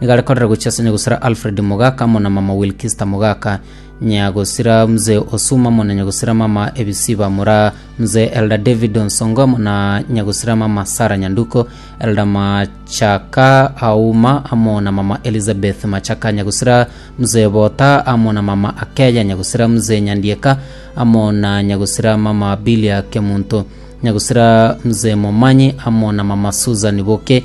Nigo are korera gochia ase nyagosira Alfred Mogaka amo na mama Wilkista Mogaka, nyagosira Mzee Osuma amo na nyagosira mama Ebisiba Mura, Mzee Elder David Onsongo amo na nyagosira mama Sarah Nyanduko, Elder Machaka Auma amo na mama Elizabeth Machaka, nyagosira Mzee Bota amo na mama Akeya, nyagosira Mzee Nyandieka amo na nyagosira mama Bilia Kemunto, nyagosira Mzee Momanyi amo na mama Susan Boke,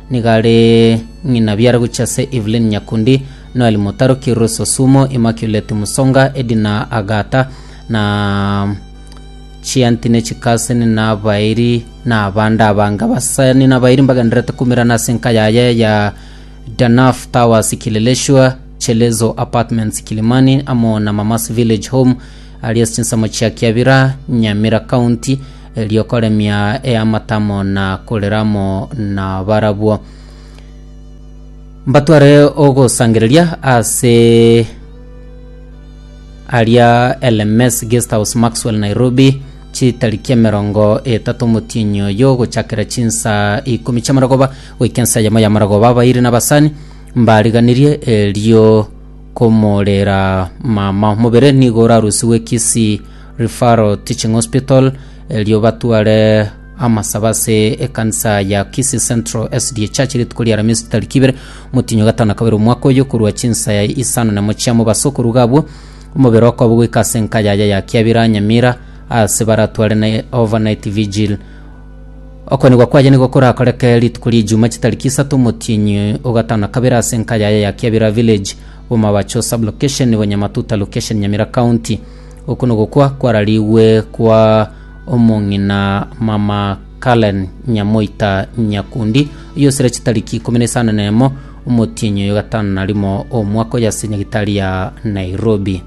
Nigo are ng'ina biara gochia ase Evelyn Nyakundi, Noel Mutaroki, Rose Osumo, Immaculate Musonga, Edna Agata, na Chianti ne Chikaseni na abairi na abande abange. Abasani na abairi mbagendererete koumerana ase enka yaye ya Danaf Towers Kileleshwa, Chelezo Apartments Kilimani amo na Mamas Village Home aria ase chinsemo chia Kiabira, Nyamira County. erio koremia eamatamo na korera amo nabarabwo. Mbatware ogosangereria ase aria LMS Guest House Maxwell Nairobi chitariki emerongo etato omotienyi oyo gochakera chinsa ikomi chiamarogoba goika ensa yamo yamarogoba abairi nabasani mbariganirie erio komorera mama omobere nigo orarusigwe Kisii Referral Teaching Hospital, erio batware amasaba ase ekanisa ya Kisii Central SDA Church rituko ria Aramisi tariki ibere motinyo gatano na kabere omwaka oyo korwa chinsaya isano na mochiamo base okoruga abwo omobere okoba goika ase enka yaya ya Kiabira Nyamira ase baratware na overnight vigil Okwenigwa kwaye nigo korakoreke rituko ria Ijumaa chitariki isato omotienyi o gatano na kabere ase enka yaya ya Kiabira Village, Bomabacho Sub-Location, Nyamatuta Location, Nyamira County. Oko nogokwa kwararigwe kwa omong'ina mama Karen Nyamoita Nyakundi, oyosire chitariki ikomi na isano na emo omotienyi oyo gatano na rimo omwaka oyo ase nyagitari ya Nairobi.